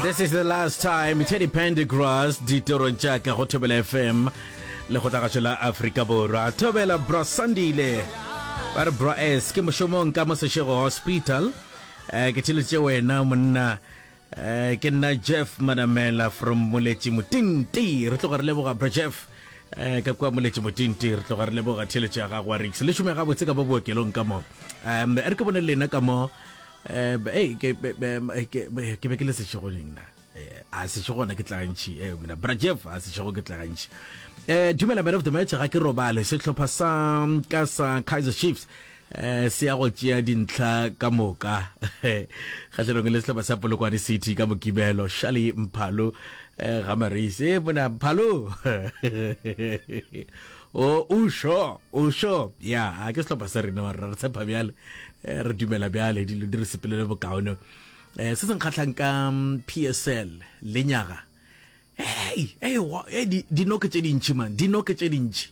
This is the last time Teddy Pendergrass ditoro tša ka go Thobela FM le go tlagatšo la Afrika Borwa Thobela Bra Sandile ba re Bra S ke mošomong ka mo Sešego Hospital eh, ke tšheletse wena monna eh, ke nna Jeff Manamela from Moletši Motinti re tloga re leboga Bra Jeff eh ka kwa moletše motinti re tloga re leboga theletše ya gago wa rix le šome gabotse ka mo bookelong ka mo um re ke bone lena ka mo Eh, b- ei, ke be- be- m- eh, ke- be- ke be ke le sešego neng na Eh, a sešego gona ke tla gantšhi eh, mina bra jeff a sešego ke tla gantšhi Eh, dumela man of the match ga ke robale sehlopha sa ka sa kaiser chiefs eh se ya go tšea dintlha ka moka kgatlhanong le sehlopha sa polokwane city ka mokibelo shali mphalo eh, ga mareise eh, bona mphalo O, o šo, o šo. Ya, a ke sehlopha sa rena, mara re tshepa bjale, eh, re dumela bjale, dilo di re sepelele bokaone. Eh, se se nkgahlang ka mm, PSL, le nyaga, hei, hei, wa- hei, di- dinoke tše dintši, man, dinoke tše dintši.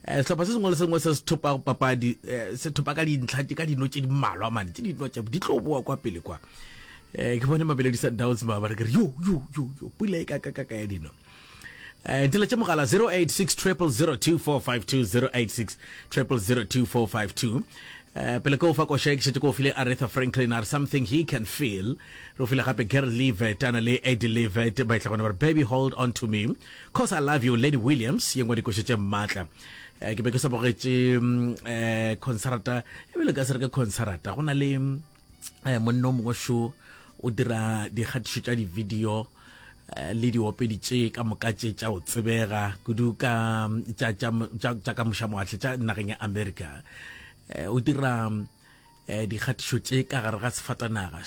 Eh, sehlopha se sengwe le sengwe se se thopa papadi, eh, se thopa ka dintlha, ka dino tše di mmalwa, man, tše dino tše, di tlo boa kwa pele kwa. Eh, ke bone Mabeledi Sundowns ba ba re ke re, yo, yo, yo, yo, pula e ka ka ka ka ya dino. Eh, tile tše mogala 086 0002452 086 0002452 eh, pele ke o fa koša e ke šetse ke o file aretha franklin are something he can feel re o file gape ger levet ana le edi levet ba etla gona gore baby hold on to me cause i love you lady williams ye ngwe dikoša tše maatla eh, ke be ke sa bogetše mm, eh, concerta ebile ka se re ke concerta go na le mm, eh, monna o mongwe šo o dira dikgatišo tša di-video eh, le diopedi tše ka moka tše tša o tsebega kudu ka tša ka mošamoatle tša nageng ya america eh, o dira dikgatišo tše ka gare ga sefatanaga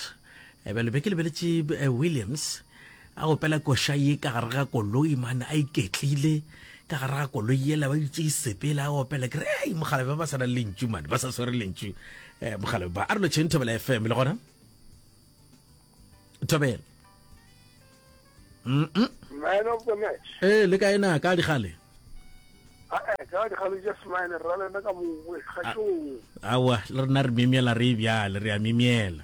bjale be ke lebeletše williams A opela koša ye ka gare ga koloi, man, a iketlile ka gare ga koloi yela, ba dutše isepela, a opela. Ke re, ei, mokgalabe ba ba sa nang lentšu, man, ba sa swere lentšu. Eh, mokgalabe ba, a re lo tšheng Thobela FM, le gona? Thobela. Mm-mm. Man of the match. Eh, le ka ena, ka digale. Ae, ka digale just mine, ra le nna ka mongwe, ga tšong. Awa, le rena re mimiela re e bjale, re a mimiela.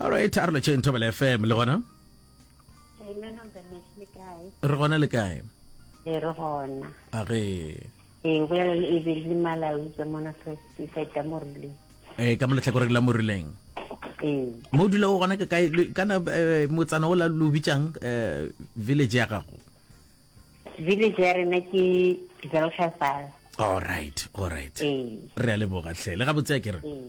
alright a re lo tšheng thobela fm le gona re gona le kae e re gona a re ee go yalo e be le malawi ke mona feta mo rileng ee ka mo letlhakoreng la mo rileng ee mo o dula o gona ke kae kana eh, motsana o la lo bitsang eh, village ya gago village ya rena ke zelshafal all right all right ee re a leboga tlhe le ga botsea ke re ee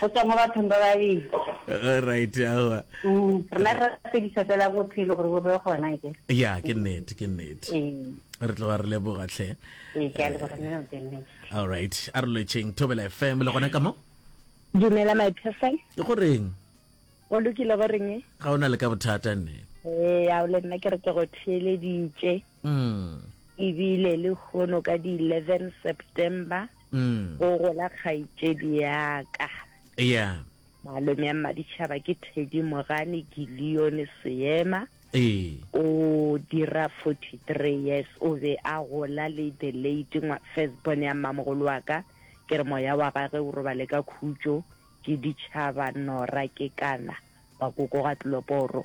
go tswa mo bathong ba babedi right awa mm, rena re fedisa fela bophelo gore bo be gona ke ya ke nnete ke nnete ee. re tloga re leboga tlhe ee, eh, all right a re lwetšheng thobela fm le gona ka mo dumela my person ke goreng o lokile goreng e? ga o na le ka bothata nne ee ao le nna ke re ke go theeleditše mm. ebile le kgono ka di-eleven september mm. go gola kgaitšedi yaka yeah. malome ya mmaditšhaba ke thedi mogane gilione seema ee. o dira 43 years o be a gola le the late first born ya mmamogolo wa ka ke re moya wa gage o robale ka khutšo ke ditšhaba nora ke kana bakoko ga tloloporo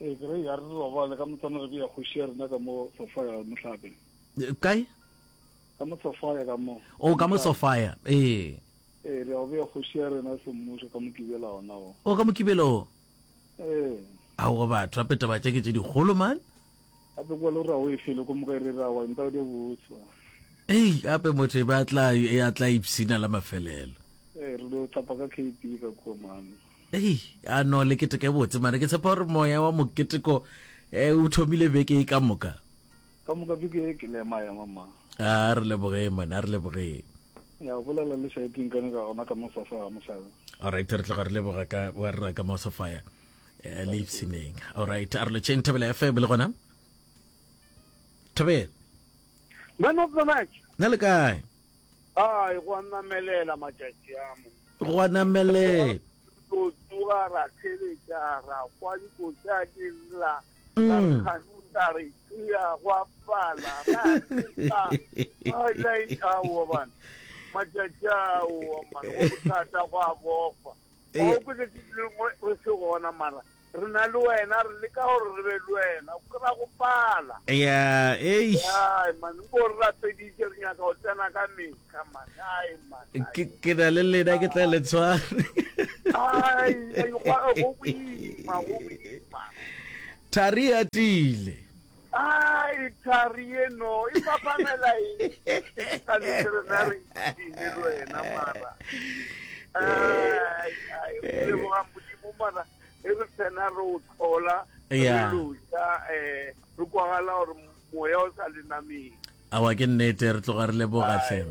Ee, ke re ya re robale ka motsana re beya kgoši ya rena ka mo sofa ya mohlape. Kae? Ka mo sofa ya ka mo. O ka mo sofa ya. Ee. Ee, re ya go beya kgoši ya rena semmušo ka mokibela ona o. O ka mokibela o. Ee. A go batho a peta batša ke tše dikgolo man. A be kwa lo ra o e fele ko moka e re ra wa nta o de botswa. Ei, a be motho e ba tla e atla ipsina la mafelelo. Ee, re lo tapa ka KP ka kwa man. Hei, a no le keteke botse mare ke tshepa gore moya wa moketeko eh, o thomile beke e ka moka. Ka moka beke e ke le ema ema mma. A re lebogeng mane, a re lebogeng. Ya o bolela le sa iping kane ka gona ka mo fa fa mosala. Alright, re tloga re leboga ka wa rra ka mosofaya eh, le ipshineng. Alright, a re lo tšeng Thobela FM le gona. Thobela, Mano Kovac, na le kae? A e go a namelela matšatši a mo. Go a namelela. Go tsoga ra theletša ra kwa dikotsa di lla ra mm. kganuta re tšea go a pala ra tsa a laitšaoa bana matšatši ao mane go bothata go a bofa Ee. Wa kwe tšatši le lengwe o se gona mara re na le wena re leka gore re be le wena o kry-a go pala. Eya, eish. Ai man o bo re rapeditše re nyaka go tsena ka metlha man ai man. ai. Ke ke na le lena ke tla le tshware. Ai, ai, gwa- go boima, go boima. Thari a tiile. Ai, thari yeno e fapamela eng ka veterinary dine le wena mara ai ai o leboga modimo mara e re tsena re o tlhola re Yeah. loja um re kwagala gore moya o sa lenameng awa ke nnete re tloga re leboga tlheng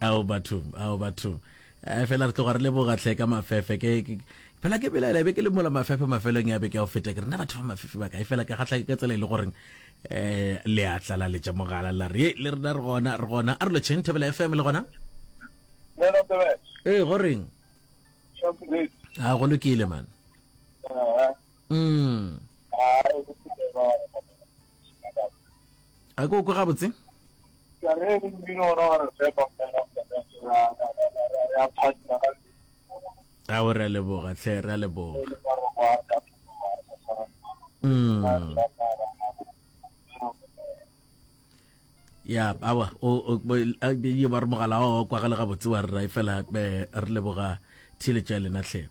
ao batho ao batho eh, fela re tloga re leboga tlhe ka mafefe ke fela ke belaela be ke le mola mafefe mafelong ya be ke a go feta ke rena batho ba mafefe ba kae fela ke gatlha ka tsela e le goreng um le a tlala letša mogala la re le rena re gona re gona a re lo cheng thobela fm le gona ee goreng a go lokile man mm. a ko kwe gabotse a o re a leboga tlhe re a leboga mm. ya awa yo ba re mogala wa kwagale gabotse wa rra e fela eh, re leboga theletša ya lena tlhe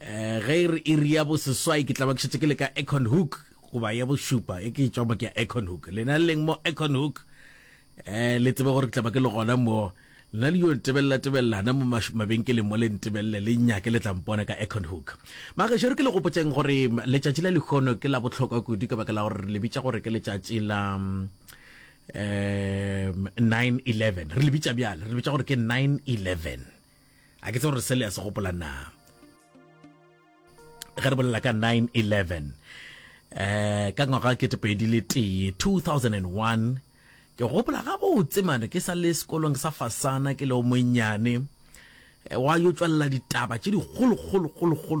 eh, ge e re iri ya boseswai ke tlaba ke šetse ke le ka econ hook goba ya bošupa e ke tswa mo ke ya econ hook lena le leng mo econ hook eh le tsebe gore ke tlaba ke le gona mo lena le yo ntebelela tebelelana mo mabenkeleng mo le ntebelele le nyake le tlampona ka econ hook magešero ke le gopotseng gore letšatši la lekgono ke la botlhokwa kudu ka baka la gore le bitša gore ke letšatši la um 911 re le bitša bjale re le bitša gore ke 911 a ke tse gore se le ya se gopola na ge re bolela ka 911 eh ka ngwaga ke tepedi le tee 2001 ke gopola ga botse mane ke sa le sekolong sa fasana ke le o monnyane eh, wa yo tswalela ditaba tše dikgolokgolokgolokgolo